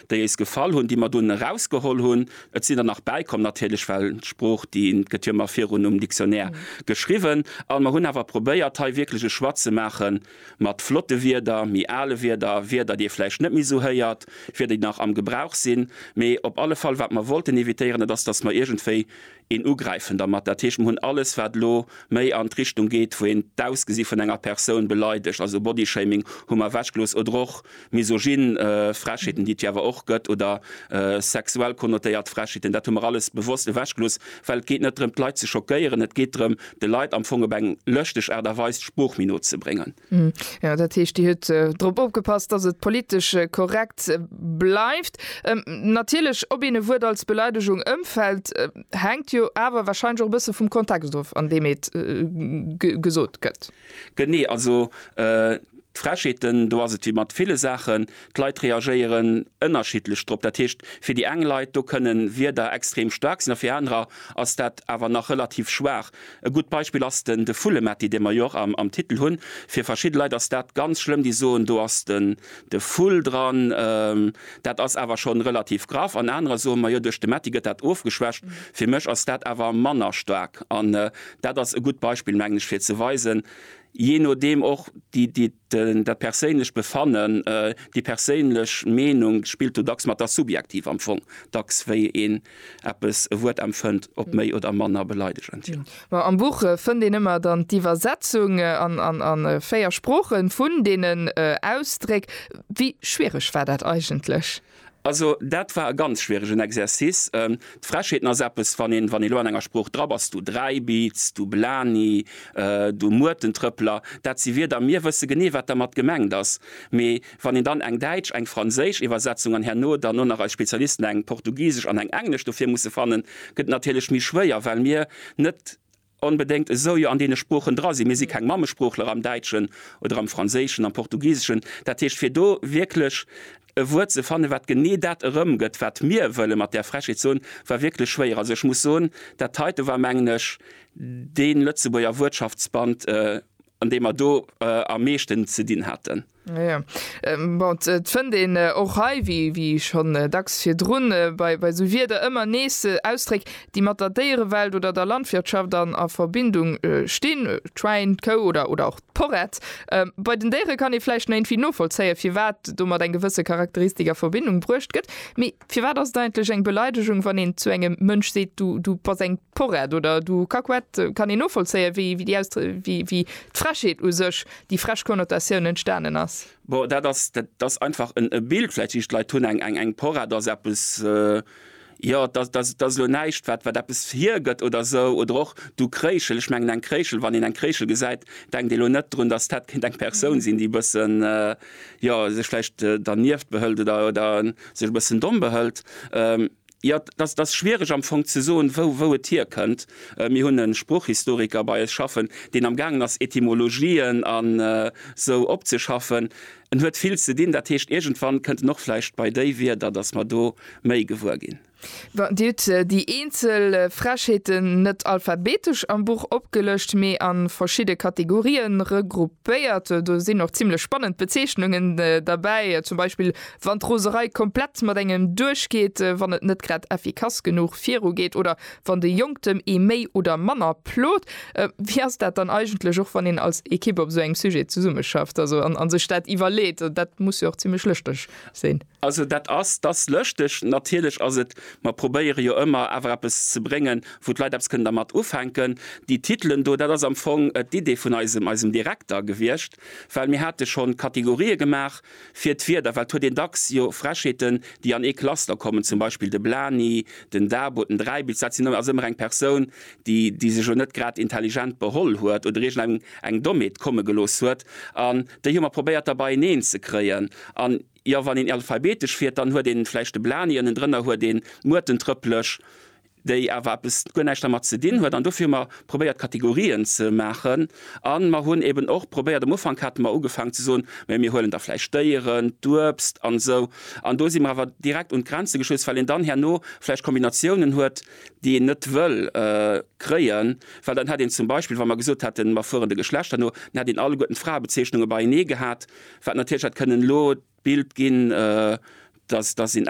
déi éis gefall hunn, déi mer dunn erausgeholl hunn, et sinn der nach bäikomm natierlech, well d'Sprooch déi gëtt jo ëmmer virun um Dictionnaire geschriwwen, an mer hunn awer probéiert hei wierklech e Choix ze maache mat flotte Wierder, méi ale Wierder, Wierder déi ee vläicht net méi esou héiert, Wierder déi nach am Gebrauch sinn, mee op alle Fall wat mer wollten évitéieren, et ass, datt mer iergendwéi een ugräifen dermat. Dat heescht, mer hunn alles wat elo méi an d'Richtung geet, wou een d'Ausgesi vun enger Persoun beleidegt, also Bodyshaming hu mer ewechgelooss, oder och misogyn Frechheeten, déi et jo awer och gëtt, oder sexuell konnotéiert Frechheeten. Dat hu mer alles bewosst ewechgelooss, well et geet net drëm d'Leit ze schockéieren, et geet drëm de Leit am Fong op eng lëschteg Aart a Weis d'Sprooch méi no ze bréngen. Hm, jo, dat heescht, Dir hutt drop opgepasst, dass et politesch korrekt bleift. Natierlech, ob een e Wuert als Beleidegung ëmfällt, hänkt jo awer wahrscheinlech och e bësse vum Kontext of, an deem et gesot gëtt. Genee, also d'Frechheeten, do ass et wéi mat ville Saachen, d'Leit reagéieren ënnerschiddlech drop. Dat heescht, fir déi eng Leit, do kënne Wierder extrem staark sinn a fir anerer ass dat awer nach relativ schwaach. E gutt Beispill ass den de Vullemetti, dee mer jo och am am Titel hunn. Fir verschidde Leit ass dat ganz schlëmm, déi soen, do ass den de Vull dran, dat ass awer schonn relativ graff. An anerer soen, majo, duerch de Metti gëtt dat ofgeschwächt. Fir mech ass dat awer manner staark. An dat ass e gutt Beispill, mengen ech, fir ze weisen, jee nodeem och déi déi den dat perséinlecht Befannen, déi perséinlech Meenung spillt do dacks mat, ass subjektiv am Fong dacks, wéi een eppes e Wuert empfënnt, ob méi oder manner beleidegend, jo. Ma am Buch fënnt een ëmmer dann d'Iwwersetzung an véier Sprooche vun deenen Ausdréck. Wéi schwiereg war dat eigentlech? Also dat war e ganz schwieregen Exercice. D'Frechheeten ass eppes, wann een wann ee lo an enger Sprooch dran ass, du Dräibiiz, du Blani, du Muertentrëppler, dat si Wierder, mir wësse genee, wat dermat gemengt ass, mee Wann een dann eng däitsch, eng franséisch Iwwersetzung an herno dann och nach eis Spezialisten eng portugisesch an eng englesch dofir musse fannen, gëtt et natierlech méi schwéier, well mir net onbedéngt esou jo an deene Sproochen dra sinn. Mir si keng Mammesproochler am Däitschen oder am Franséischen, am Portugiseschen. Dat heescht, fir do wierklech e Wuert ze fannen, wat genee dat erëmgëtt, wat mir wëlle mat där Frechheet soen, war wierklech schwéier. Also ech muss soen, dat heite war, mengen ech, dee Lëtzebuerger Wuertschaftsband, an deem mer do am meeschten ze dinn haten. Jo, bon, et fënnt een och hei, wéi schonn dacks virdrun, bei esou Wierder ëmmer nees Ausdréck, déi mat der Déierewelt oder der Landwirtschaft a Verbindung stinn, d'Schwäin, d'Kou oder och d'Porrett. Bei den Déiere kann ee vläicht nach iergendwéi novollzéien, firwat domat eng gewësse Charakteristik a Verbindung bruecht gëtt. Mee firwat ass et eigentlech eng Beleidegung, wann een zu engem Mënsch seet, du bass eng. Porrett oder du Kakuett kann een novollzéien, wéi d'Frechheet u sech, déi frech Konnotatioun entstanen ass. Bon, dat ass, dat ass einfach en Bild. Vläicht sinn d'Leit hunn eng Porrett ass eppes, jo, dat ass elo näischt, wat eppes hiergëtt oder esou. Oder och du Kréischel, ech mengen eng Kréischel, wann een eng Kréischel gesäit, denkt ee elo net drun, dass dat kéint eng Persoun sinn, déi e bëssen, jo, sech vläicht dernieft behëlt oder sech e bëssen domm behëlt. Jo, et ass schwiereg am Fong ze soen, wou et hierkënnt. Mir hunn e Sproochhistoriker bei eis schaffen, deen amgaangen ass Etymologien an esou opzeschaffen. En huet vill ze dinn, dat heescht iergendwann kënnt en och vläicht bei déi Wierder, datt mer do méi gewuer ginn. Dir hutt déi eenzel Frechheeten net alphabetesch am Buch opgelëscht, mee a verschidde Kategorië regruppéiert. Béiert, do sinn och zimlech spannend Bezeechnungen derbäi, zum Beispill wann d'Roserei komplett mat engem duerchgeet, wann et net grad effikass genuch virugeet oder wann de Jonktem ee méi oder manner plot. Wéi ass dat dann eigentlech och wann een als Ekipp op esou engem Sujet zesummeschafft, also an sech dat iwwerleet? Dat muss jo och zimlech lëschteg sinn. Also dat ass, et ass lëschteg, natierlech ass et, mer probéiere jo ëmmer awer eppes ze bréngen, wou d'Leit eppes kënnen dermat ufänken. Déi Titelen do, dat ass am Fong d'Idee vun eisem, eisem Direkter gewiescht, well mir hate schonn Kategorië gemaach fir d'Wierder, well et huet een dacks jo Frechheeten, déi an ee Cluster kommen, zum Beispill de Blani, den Dabo, den Dräibilz, dat sinn also ëmmer eng Persoun, déi, déi sech elo net grad intelligent beholl huet oder iergendeng eng Dommheet komme gelooss huet, an déi hu mer probéiert da beieneen ze kréien. An. Jo, wann een alphabetesch fiert, dann huet een vläicht de Blany, ënnendrënner huet een d'Muertentrëpplech, déi awer eppes, guer näischt dermat ze dinn huet. An dofir hu mer probéiert Kategorien ze maachen an mer hunn eben och probéiert, am Ufank hate mer ugefaangen ze soen, mä mir huelen da vläicht d'Déieren, d'Uebst an esou. An do si mer awer direkt un d'Grenze gestöss, well een dann herno vläicht Kombinatiounen huet, déi een net wëll kréien, well dann hätt een zum Beispill, wa mer gesot hätten, mer fueren de Geschlechter no, dann hätt een alleguerten d'Fraebezeechnunge beienee gehat. Wat natierlech hätt kënnen elo d'Bild ginn, dass, dass een.